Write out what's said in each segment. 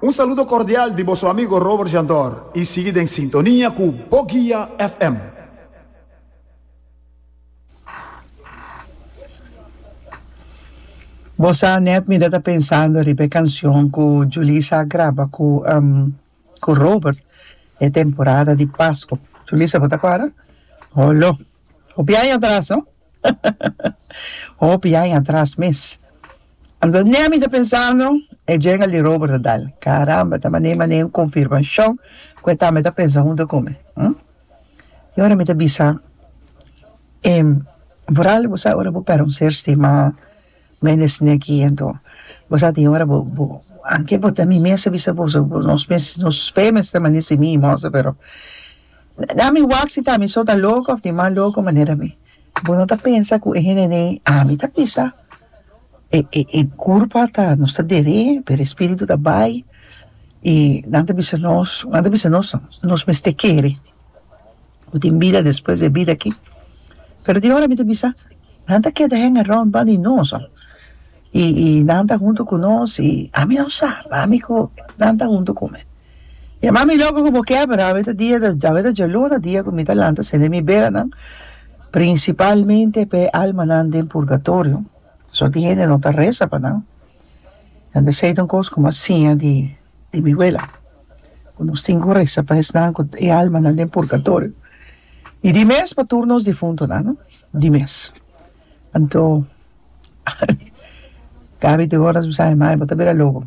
Un saludo cordial di boso amigo Robert Jandor y sigui den sintonia cu Bo Guia FM. Bo sa net mi ta ta pensando riba e cancion cu Julissa a graba cu cu Robert e temporada di Pasco. Julissa bo ta acorda? Holo! Hopi aña atras, no? Hopi aña atras mes. Anto ne ami ta pensando e djega li Robert ta dal. Caramba, ta mane mane un confirmacion cu e tambe ta pensa hunto cu mi. Hm? Y ora mi ta bisa, em, Vooral, bo sa ora bo pera un ser stima Menes ne aki anto bo sa tin ora bo bo anke bo ta mi mester bisa boso bo nos mes nos fe mester mane si mi moso pero na mi wak si ta mi so ta loko of tin mas loko manera mi bo no ta pensa ku e hende nei ami ta bisa e e e kurpa ta nos ta dere pero e spiritu ta bai i nan ta bisa nos nan ta bisa nos nos mester kere. Ku tin bida despues di e bida akí. Pero di ora mi ta bisa, nan ta keda hang around banda di nos, oh. I, i nan ta huntu ku nos, i ami no sa, ami ku nan ta huntu ku mi. E mami loko ku bo ke, pero awe ta dia, awe ta djaluna dia ku mi ta lanta sende mi beranan, prinsipalmente pa e almanan den purgatorio. Soti hende no ta resa pa nan. Nan ta seita un kos komo a siña di. di mi wela cu nos tin cu reza pa esnan cu e almanan den purgatorio y di mes pa tur nos difuntonan no di mes anto Gaby di ora mi sa e mai bo ta bira loco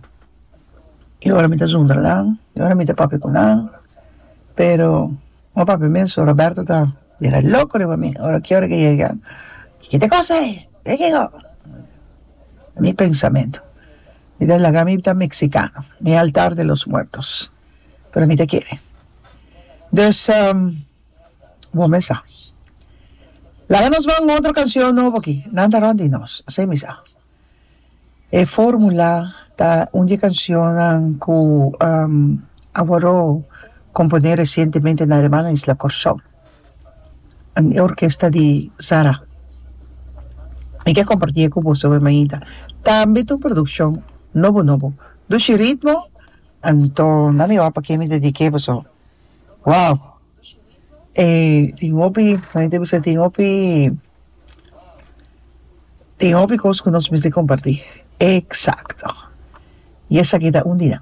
y ora mi ta zundra nan y ora mi ta papia cu nan pero no papia mes so Roberto ta bira loco riba mi ora ki ora ki e yega kiko ta cosa ayi kiko mi pensamento. Mi ta laga mi ta mexicano ni altar de los muertos pero mi ta kere dus bo me sa laga nos man otro cancion nobo aki nan ta rond di nos así mi sa e formula ta un di e cancionnan cu a woro compone recientemente na hermana isla Corsou. e orkesta di Sara. Mi ke kompartí e ku boso awor mainta. Tambe ta un produkshon nobo nobo. Dushi ritmo, anto nan mi wou pak'é mi dedik'é boso. Wow! E tin hopi, nan a bisa tin hopi, tin hopi kos ku nos mester kompartí. Eksakto! I esaki ta un di nan.